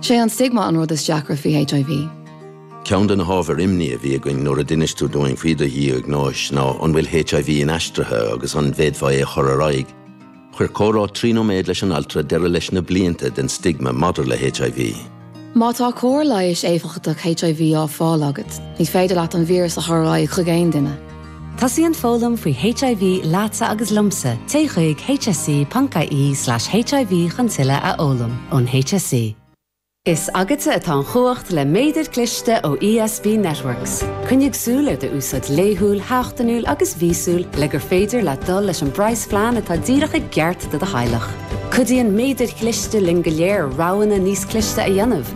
Sé an stigma an rud is deacra faoi HIV. Ceann de na hábhair imní a bhí againn nuair a d'inis tú dúinn faoi do dhiagnóis ná an bhfuil HIV inaistrithe agus an bhféadfá é a chur ar aghaidh. Chuir comhrá trí nóiméad leis an altra deireadh leis na blianta den stigma maidir le HIV. Má tá cóir leighis éifeachtach HIV á fáil agat, ní féidir leat an víreas a chur ar aghaidh chuig aon duine. Tosaíonn foghlaim faoi HIV leatsa agus liomsa, téigh chuig hse.ie slash HIV chun tuilleadh a fhoghlaim. Ón HSE. Is agatsa atá an chumhacht le Méadair Cliste ó ESB Networks. Coinnigh súil ar do úsáid laethúil, seachtainiúil agus míosúil le gur féidir leat dul leis an bpraghasphlean atá díreach i gceart do do theaghlach. Cuidíonn Méadair Chliste linn go léir roghanna níos cliste a dhéanamh.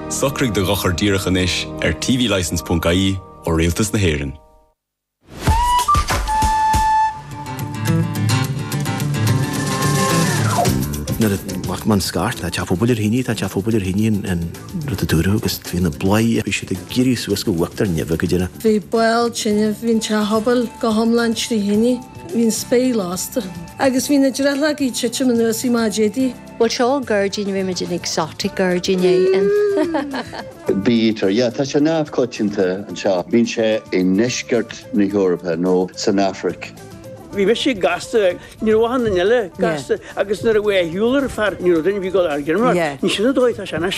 Socraigh do dhochar díreach anois ar tvlicense.ie ó Rialtas na hÉireann. Nuair a ghlac mé an scairt, tá teach pobail ar thine, tá teach pobail ar thine an rud a dúradh agus bhí na bladhairí ag éirí suas go huachtar neimhe go deimhin. Bhí ball tineadh, bhí an teach pobail go hiomlán trí thine, bhí an spéir lasta agus bhí na drithleogaí ag titim anuas i mbáidéidí. Bhuel seo gairdín roiméid an exotic gairdín é an. Bítear, yeah, tá sé neamhchoitianta anseo. Bíonn sé i ndeisceart na hEorpa nó san Afraic. Bhí mise ag gasta, ní raibh aithne eile, gasta, agus nuair a bhí a shiúl ar a fear, ní raibh duine bhí ag dul ar a gcineamar, ní sin an dóigh atá sé anois.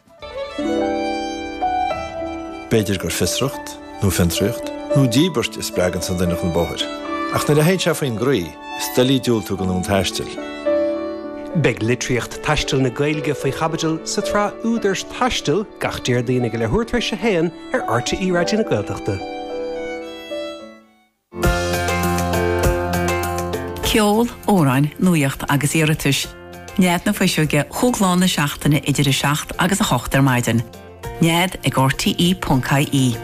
B'fhéidir gur fiosracht, nó fiontraíocht, nó díbirt a spreagann an duine chun bóthair, ach nuair a théann sé faoin gcroí, is doiligh diúltú don fhonn taistil. Beidh litríocht taistil na Gaeilge faoi chaibidil sa tsraith Údar Aistir gach Déardaoin ag a leathuair tar éis a haon ar rte Raidió na Gaeltachta. Ceol, amhráin, nuaíocht agus iarratais. Nead na Fuiseoige chúig lá na seachtaine idir 7 agus 8 ar maidin. Nead ag rte.ie.